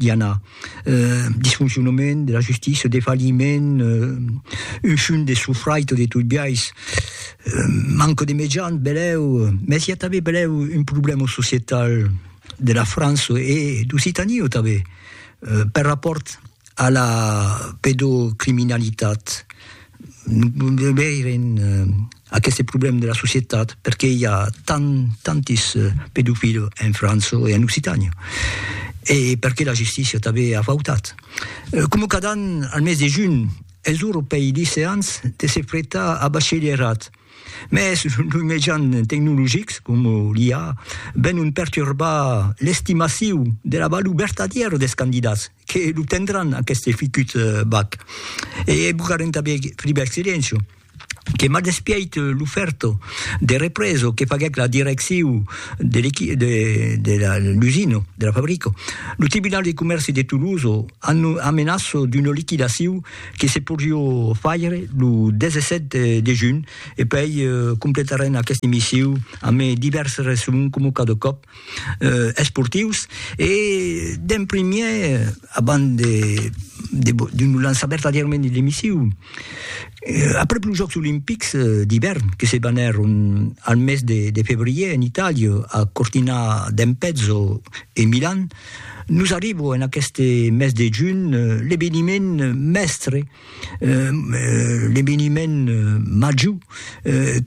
Diana, eh, disfoncionament de la justícia, defalhiment, eh, un fum de sofraito de tot biais, eh, manco de mejans, belèu, mès i a tanben belèu un problèma societal de la França e d'Occitania tanben, eh, per rapòrt a la pedocriminalitat. de veire aqueste problème de la societat, perqué i a tant, tantis pedofils en França e en Occitània, e perqué la justícia tanben a fautat. Coma cada an, al mes de junh, es ora pei liceants de se pretar a bachelièrat, mès los mejans tecnologics, coma l'IA, venon perturbar l'estimaciu de la valor vertadièra dels candidats. Que lo tendràn aqueste ficut bag. E bugarem tanben Flibert Silencio, que m'a despièit l'ofèrta de represa que faguèc la direcciu de l'equi de de la l'usina, de la fabrica. Lo Tribunal de Comèrci de Tolosa anno amenaça d'una liquidaciu que se podriá faire lo 17 de junh e puèi completarem aqueste missiu amé divèrses resson coma cada còp. esportius e d'en primièr abans de de lo lançar vertadièrament de l'emissiu après los jòcs olimpics d'ivèrn que se banèron al mes de febrièr en Itàlia a Cortina d'Ampezzo e Milan nos arriba en aqueste mes de junh l'eveniment mèstre l'eveniment major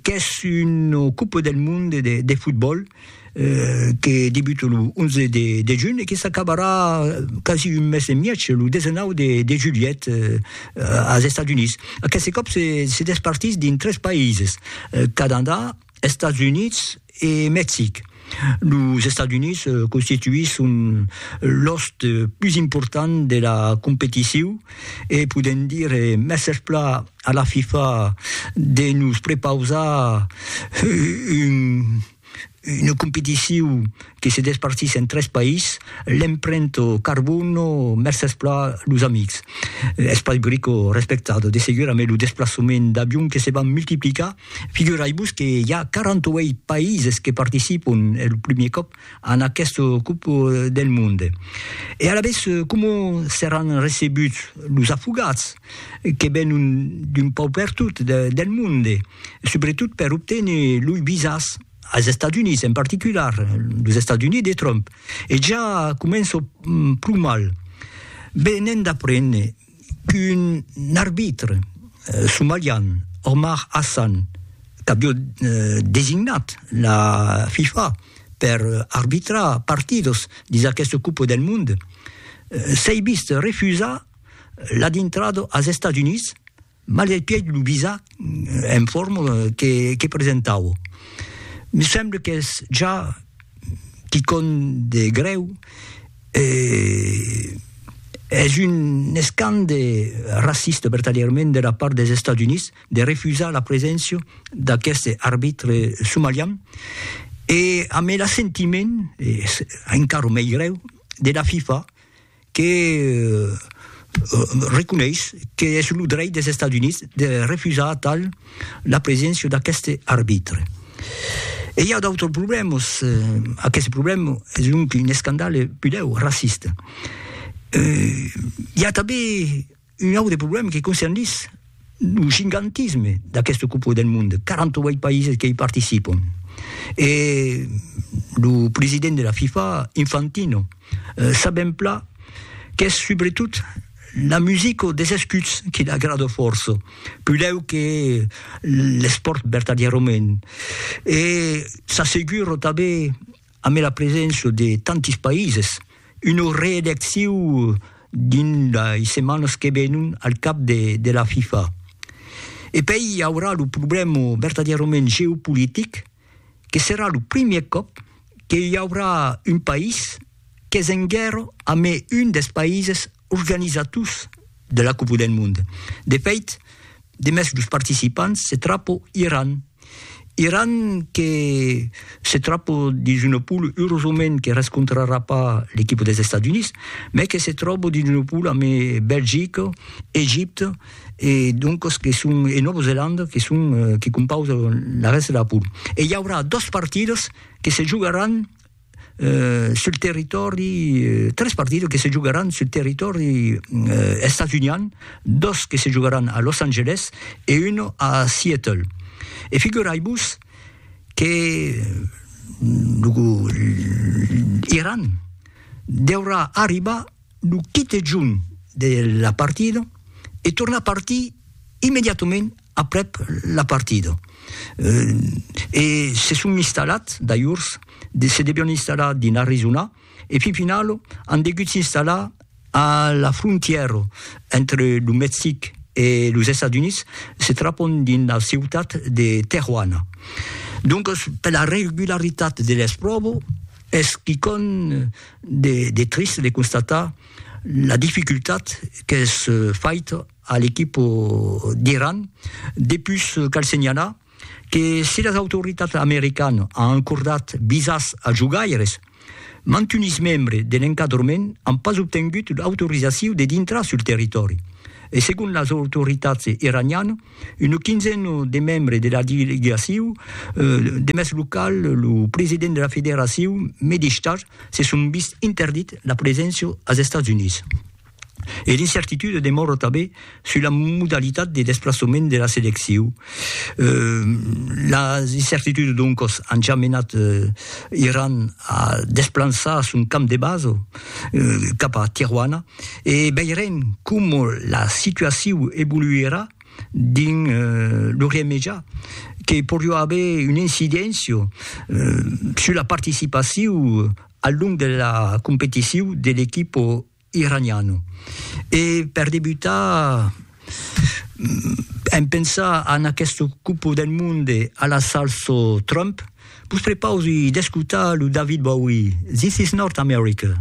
qu'es una copa del monde de fotbòl que debute lo 11 de junh e que s'acabarà quasi un mes e mièg, lo 19 de julhet, als Estats Units. Aqueste còp se despartís dins tres païses, Canadà, Estats Units e Mexic. Los Estats Units constituisson l'òst pus important de la competicion e podèm dire mèsses plan a la FIFA de nos prepausar una competicion que se despartís en tres país, l'emprènt carbon, mercés pla los amics. Espai Brico respectat, de segur amé lo desplaçament d'avion que se van multiplicar, figurai-vos que i a 48 países que participon, es lo primier còp, en aqueste cop del monde e alavetz coma seràn recebuts los afogats que venon d'un pauc pertot del monde, subretot per obténer loi visas als Estats Units, en particular los Estats Units de Trump e ja començo pro mal venent d'aprene qu'un arbitre somalian, Omar Hassan, qu'avió designat la FIFA per arbitrar partidos dins aquesta Copa del Mond, s'ei vist refusar la dintrada als Estats Units Mal del pièd lo visa en forma que presentavo. Me semble qu'es ja quicòm de grèu e es un escande racista vertadièrament de la part dels Estats Units de refusar la preséncia d'aqueste arbitre somalian e ambe l'assentiment, es encara mei grèu, de la FIFA. que reconeis que es lo dreit des Estats Units de refusar atal la preséncia d'aqueste arbitre. E i a d'autres problèmas. Aqueste problèma es donc un escandale pudèu racista. I a tanben Un aute problèma que concernís lo gigantisme d'aqueste Copa del Mond, 48 païses que i participon. E lo president de la FIFA, Infantino, sabèm plan qu'es subretot la musica des escuts que l'agrada fòrça, pudèu que l'espòrt vertadièrament. E s'assegura tanben amé la preséncia de tantis païses, una reelecciu dins lei setmanas que venon al cap de de la FIFA. E pei i aurà lo problèma vertadièrament geopolitic que serà lo primièr còp que i aurà un país qu'es en guèrra amé un dels païses Organizators de la Copa del Mond. De fait, demest los participants se trapo Iran. Iran que se trapo dins una poule, eurosament que rescontrarà pas l'equipa dels Estats Units, mai que se tròbo dins una poule amb Belgica, Egipte e doncas que son e Nòva Zelanda que son que compausan la rèsta de la poule. E i aurà dos partidas que se jogaràn sul territòri, tres partidas que se jogaràn sul territòri estatunian, dos que se jogaràn a Los Angeles e uno a Seattle. E figurai-vos que lo Iran deurà arribar Lo quite junh de la partida e tornar partir immediatament aprèp la partida. E se son installat, d'ajors, se devion installar dins Arizona e fin final an degut s'installar a la frontièra entre lo Mexic e los Estats Units, se trapon dins la ciutat de Tejuana. Doncas, per la regularitat de l'espròva, Es quicòm de trist de constatar la dificultat qu'es faita a l'equip d'Iran, depús cal senhalar que se las autoritats americanas an acordat visas als jogaires, mantunis membres de l'encadrament an pas obtengut l'autorizacion de dintrar sul territòri e segon las autoritats iranianas, Una quinzena de membres de la delegacion de mès local, lo president de la federacion Medistar, se son vist interdit la preséncia als Estats Units. E l'incertitude demòra tanben sus la modalitat de desplaçament de la seleccion. Las incertitudes doncas an ja menat Iran a desplançar son camp de basa cap a Tijuana. e veirem coma la situacion evoluirà dins l'Orient Mejà, que poriá aver una incidéncia sus la participacion al long de la competicion de l'equipa iraniana. E per debutar, en pensar en aquesta Copa del Monde a la salsa Trump, vos prepausi d'escotar lo David Bowie, This is North America.